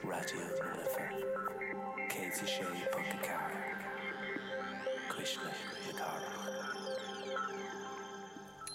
Raidió na Life 106.4, Cuisle na Cathrach.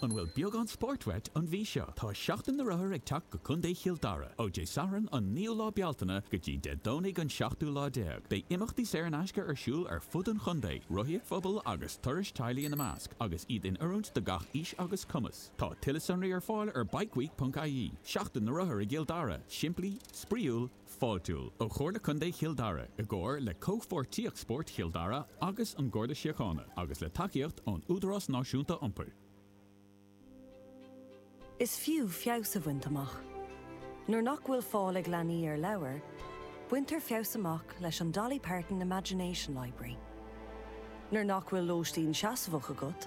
An bhfuil beagán spóirt uait an mhí seo? Tá Seachtain na Rothar ag teacht go Contae Chill Dara, ó Dé Sathairn an 9ú lá Bealtaine go dtí Dé Domhnaigh an 7ú lá déag. Beidh imeachtaí saor in aisce ar siúl ar fud an chontae, rothaíocht phobail agus turais teaghlaigh ina measc, agus iad in oiriúint do gach aois agus cumas. Tá tuilleadh sonraí ar fáil ar bikeweek.ie, Seachtain na Rothar i gCill Dara, Simplí, Spraíúil, Fáiltiúil, ó Chomhairle Contae Chill Dara, i gcomhar le Comhpháirtíocht Spóirt Chill Dara agus an Garda Síochána, agus le tacaíocht ón Údarás Náisiúnta Iompair. Is fiú feabhas a bhaint amach. Nuair nach bhfuil fáil ag leanaí ar leabhair, baintear feabhas amach leis an Dolly Parton Imagination Library. Nuair nach bhfuil lóistín seasmhach agat,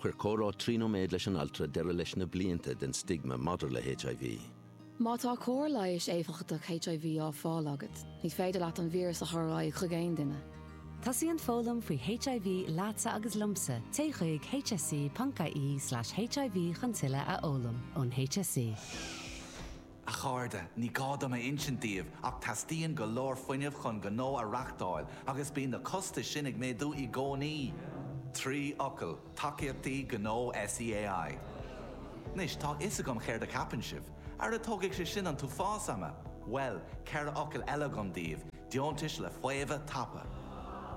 Chuir comhrá trí nóiméad leis an altra deireadh leis na blianta den stigma maidir le HIV. Má tá cóir leighis éifeachtach HIV á fháil agat, ní féidir leat an víreas a chur ar aghaidh chuig aon duine. Tosaíonn foghlaim faoi HIV leatsa agus liomsa, téigh chuig hse.ie/hiv chun tuilleadh a fhoghlaim ón HSE. A chairde, ní gá dom a insint daoibh ach teastaíonn go leor fuinnimh chun gnó a reáchtáil agus bíonn na costais sin ag méadú i gcónaí! Trí fhocal, Tacaíochtaí Gnó SEAI. Anois, tá a fhios agam céard a cheapann sibh. Ara tógfaidh sé sin an t-uafás ama! Bhuel, ceithre fhocal eile agam daoibh, Deontais le Faomhadh Tapa.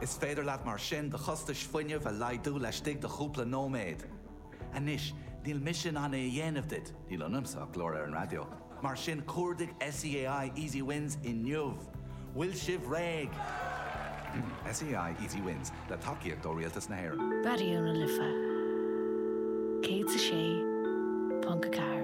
Is féidir leat mar sin do chostais fuinnimh a laghdú laistigh de chúpla nóiméad. Anois, níl mise in ann é a dhéanamh duit, níl ionamsa ach glór ar an raidió, mar sin cuardaigh SEAI Easy Wins inniu! Bhfuil sibh réidh? SEAI Easy Wins, le tacaíocht ó Rialtas na hÉireann. Raidió na Life 106.4.